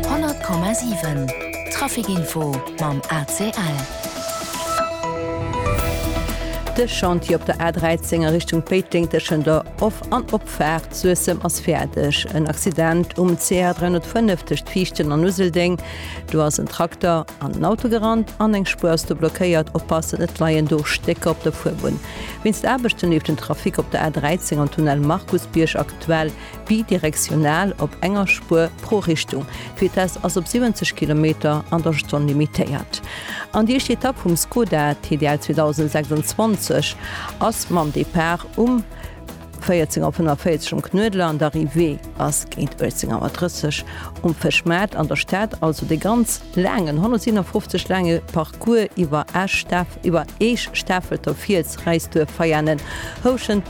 100,7 Trafic Info mam ACL. De Chantier op der A13 a Richtung Péiteng tëschent der Of an Opfaart Suessem ass fäerdeg. En Accident um CR 305 tëscht Viichten an Useldeng, Do ass en Trakter an en Auto gerannt an eng Spuer ass do blockéiert. Oppassen, et leien do Stécker op der Fuerbunn. Wéinst Aarbechten leeft den Trafic op der A13 am Tunnel Markusbierg aktuell. Bidirektional op enger Spuer pro Richtung. D'Vitess ass op 70 Kilometer an der Stonn limitéiert. An déi éischt Etapp vum Skoda TDL 2026 ass mam Depart um 14.45 Auer um Knuedler an d'Arrivée ass géint 18.30 Auer um Fëschmaart an der Stad. Also dee ganz laangen, 157 laange Parcours iwwer Esch, Staf iwwer Eech, Stafelter, Fiels, Räisduerf, Veianen, Houschent,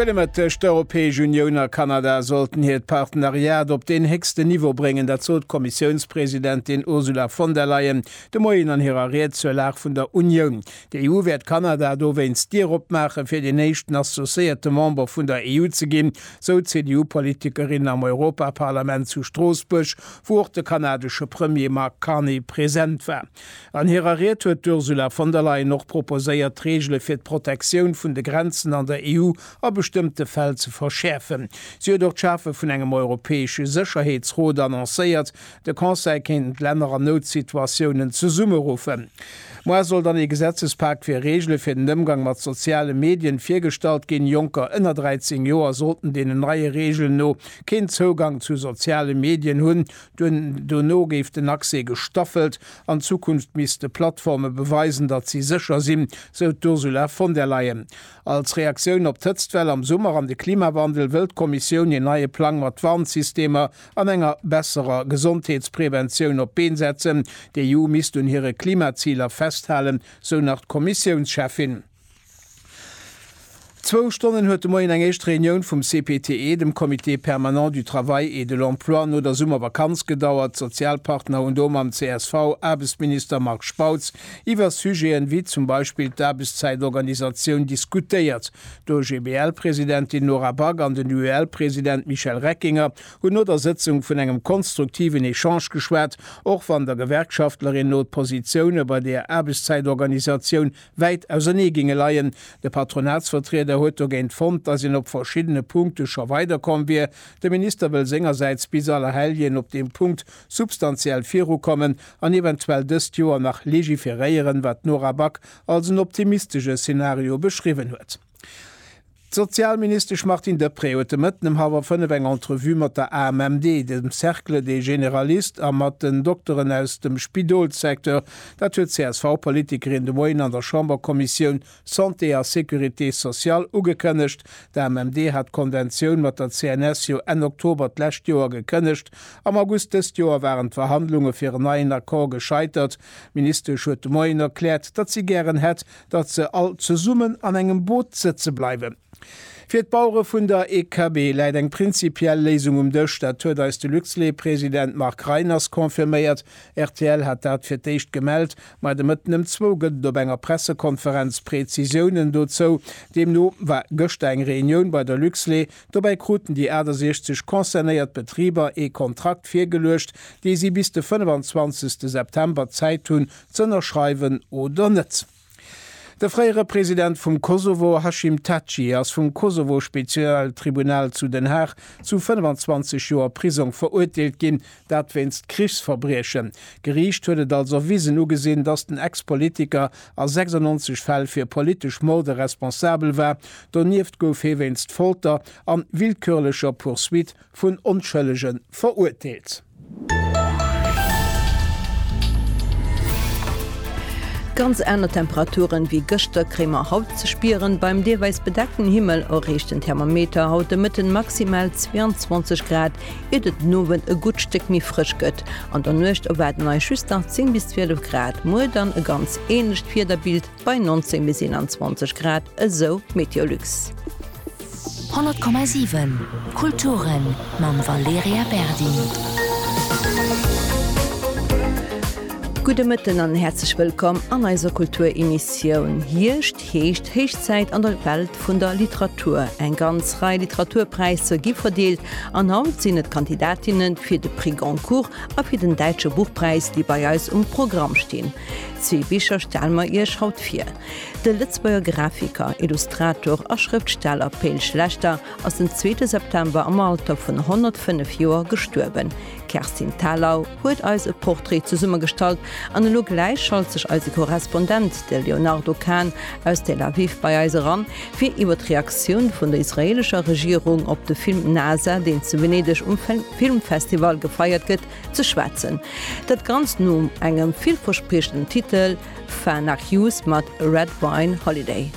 Gëtt e Mëtt tëscht der Europäesch Unioun a Kanada sollten hiert Partenariat op deen héchsten Niveau bréngen. Dat sot d'Kommissiounspresidentin Ursula von der Leyen de Moien an hirer Ried zur Lag vun der Unioun. D'EU wäert Kanada dowéinst d'Dier opmaachen, fir deen éischten associéierte Member vun der EU ze ginn, sou d'CDU-Politikerin am Europaparlament zu Stroossbuerg, wou och de kanadesche Premier Mark Carney present war. An hirer Ried huet d'Ursula von der Leyen och proposéiert, d'Reegele fir d'Protektioun vun de Grenzen an der EU a bestëmmte Fäll ze verschäerfen. Si huet och d'Schafe vun engem europäesche Sécherheetsrot annoncéiert. De Conseil kéint d'Länner an Noutsituatiounen zesummeruffen. Moar soll dann ee Gesetzespak fir Reegele fir den Ëmgang mat soziale Medien virgestallt ginn. Jonker ënner 13 Joer sollten deenen neie Reegelen no keen Zougang zu soziale Medien hunn, Duerno géif den Accès gestaffelt an Zukunft misste Plattforme beweisen, datt si sécher sinn, sou d'Ursula von der Leyen. Als Reaktioun op d'Hëtztwell am Summer an de Klimawandel wëll d'Kommissioun een neie Plang mat Warnsystemer an enger besserer Gesondheetspreventioun op d'Been setzen. D'EU misst un hire Klimaziler festhalen, sou nach d'Kommissiounscheffin. Zwou Stonnen huet de Moien eng éischt Reunioun vum CPTE, dem Comité permanent du travail et de l'emploi, no der Summervakanz gedauert. D'Sozialpartner hunn do mam csv Aarbechtsminister Marc Spautz iwwer Sujeten, wéi zum Beispill d'Aarbechtszäitorganisatioun diskutéiert. D'OGBL-Presidentin Nora Back an den UEL-President Michel Reckinger hunn no der Sëtzung vun engem konstruktiven Echange geschwat, och wann der Gewerkschaftlerin no d'Positioune bei der Aarbechtszäitorganisatioun wäit ausernee géinge leien. De Patronatsvertrieder huet dogéint fonnt, datt een op verschiddene Punkte scho weiderkomm wier. De Minister wëll sengersäits bis Allerhelljen op deem Punkt substantiell virukommen an eventuell dëst Joer nach legiferéieren, wat d'Nora Back als en optimistesche Szenario beschriwwen huet. D'Sozialministesch Martine Deprez huet de Mëtten ëm hallwer fënnef eng Entrevue mat der AMMD, dem Cercle des Généralistes a mat den Dokteren aus dem Spidolssecteur. Dat huet d'CSV-Politikerin de Moien an der Chamberkommissioun Santé a Sécurité sociale ugekënnegt. D'AMMD hat d'Konventioun mat der CNS jo Enn Oktober d'lescht Joer gekënnegt. Am August dëst Joer waren d'Verhandlunge fir en neien Accord gescheitert. D'Ministesch huet de Moien erkläert, datt si gären hätt, datt se all zesummen an engem Boot sëtze bleiwen. Fir d'Bauere vun der EKB läit eng prinzipiell Léisung um Dësch, dat huet eis de Luxlait-President Marc Reiners confirméiert. Rtl hat dat fir d'éischt gemellt, ma de Mëtten ëm zwou gëtt et op enger Pressekonferenz Prezisiounen dozou. Deemno war gëschter eng Reunioun bei der Luxlait. Dobäi kruten déi 68 concernéiert Betriber ee Kontrakt virgeluecht, dee si bis de 25. September Zäit hunn, z'ënnerschreiwen oder net. De fréiere President vum Kosovo Hashim Thaçi ass vum Kosovo-Spezialtribunal zu Den Haag zu 25 Joer Prisong verurteelt ginn, dat wéinst Krichsverbriechen. D'Geriicht huet et als erwisen ugesinn, datt den Ex-Politiker a 96 Fäll fir politesch Morde responsabel war. Donieft gouf hie wéinst Folter an willkürlecher Poursuite vun Onschëllege verurteelt. Ganz aner Temperaturen ewéi gëschter kréie mer haut ze spieren. Beim deelweis bedeckten Himmel erreecht den Thermometer haut de Mëtten maximal 22 Grad, iert et den Owend e gutt Stéck méi frësch gëtt. An der Nuecht erwaarden eis just nach 10 bis 12 Grad. Muer dann e ganz änlecht Wiederbild. Bei 19 bis 21 Grad, esou d'Meteolux. 100,7 Kulturen mam Valerija Berdi. Gudde Mëtten an häerzlech wëllkomm an eiser Kulturemissioun. Hierscht heescht héich Zäit an der Welt vun der Literatur. Eng ganz Rei Literaturpräisser gi verdeelt an haut sinn et d'Kandidatinnen fir de Prix Goncourt a fir den Däitsche Buchpräis, déi bei eis um Programm stinn. Zwee Bicher stelle mer Iech haut vir. De Lëtzebuerger Grafiker, Illustrator a Schrëftsteller Pe'l Schlechter ass den zweete September am Alter vun 105 Joer gestuerwen. D'Kerstin Thalau huet eis e Portrait zesummegestallt an elo gläich schalt sech eise Korrespondent, de Léonardo Kahn aus Tel Aviv bei eis eran, fir iwwer d'Reaktioun vun der israelescher Regierung op de Film Nasa, deen zu Venedeg um Filmfestival gefeiert gëtt, Ze schwätzen. Dat Ganzt nom engem villverspriechenden Titel Far Nach Youth mat Red Wine Holiday.